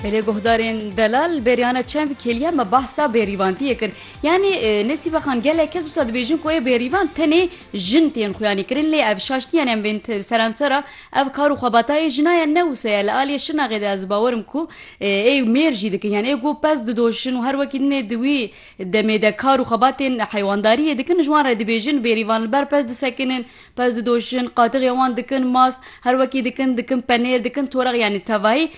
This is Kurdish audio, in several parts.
Belê guhdarên delal bêriyane çend kêliya me bahsa bêrîvantiyê kir. Yanî Nesîbe xan gelek kes wisa dibêjin ku ê bêrîvan tenê jin tên xuyanî kirin lê ev şaştiyan em bên serensera ev kar û xebata ê jina ye ne wisa ye li aliyê Şirnaxê de ez bawer im ku ê mêr jî dikin yan ê ku pez didoşin û her wekî din ê di wî demê de kar û xebatên heywandariyê dikin ji wan re dibêjin bêrîvan li ber pez disekinin Pez didojin, qadixê wan dikin mast, her wekî dikin, dikin penêr, dikin toreq yanî tevayî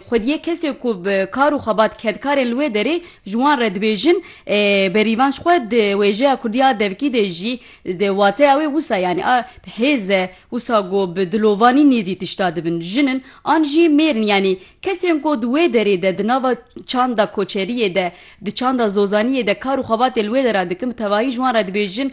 xwediyê kesê ku bi kar û xebat kedkar ê li wê derê ji wan re dibêjin berîvan ji xwe di wêjeya kurdî ya devkî de jî di wateya wê wisa yanî a hêz e wisa ku bi dilovanî nêzî tişta dibin jin in an jî mêr in yanî kesên ku di wê derê de di nava çanda koçeriyê de Di çanda Zozaniyê de kar û xebatê li wê de re dikin, bi tevahî ji wan re dibêjin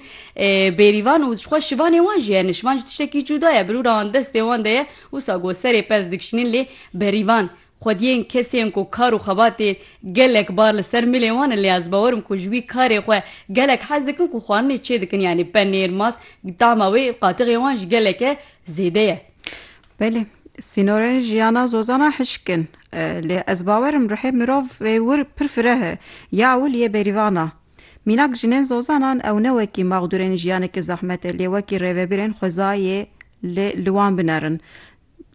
bêrîvan û jixwe şivanê wan jî hene. Şivan jî tiştekî cuda ye, birûra wan destê wan de ye. Wisa ku serê pez dikişînin lê berîvan, xwediyên kesên ku kar û xebatê gelek bar li ser milê wan in lê ez bawer im ku ji wî karê xwe gelek hez dikin ku xwarinê çê dikin yanî penêr, mas, tahma wê qatiqê wan jî geleke zêde ye. Belê, sînorên jiyana zozana hişk in. Lê ez bawer im ruhê mirov ê wir pir fireh e. Ya ewil yê bêrîvan a. Mînak jinên zozanan ew ne wekî maxdûrên jiyanekî zehmet e lê wekî rêvebirên xwezayê li li wan binerin.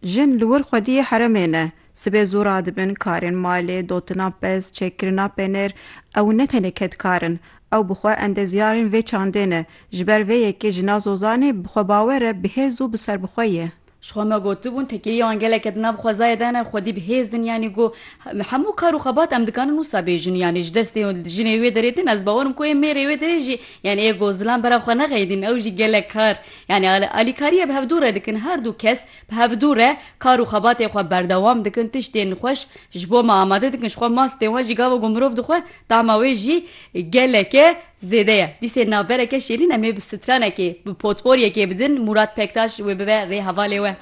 Jin li wir xwediyê heremê ne. Sibê zû radibin karên malê, dotina pez, çêkkirina penêr, ew ne tenê kedkar in, ew bi xwe endezyarên vê çandê ne, ji ber vê yekê jina Zozanê bi xwe bawer e, bi hêz û bi serbixwe ye. Ji xwe me gotibûn, tekeyî wan gelek e di nav xwezayê de ne, xwedî bi hêz in, yanî got, Hemû kar û xebat em dikarin wisa bêjin, yanî ji destê jinê wê derê tên, ez bawer im ku ê mêrê wê derê jî, yanî ê got zilam bera xwe nexeydîn, ew jî gelek kar, yanî alîkariyê bi hevdû re dikin, her dû kes, Bi hevdu re kar û xebatên xwe berdewam dikin, tiştên xweş ji bo me amade dikin, ji xwe mastên wan jî gava ku mirov dixwe tahma wê jî geleke zêde ye. Dîsên navbereke şêrîn em ê bi stranekê, bi potporyekê bidin Mûrat Pektaş wê bibe rê hevalê we.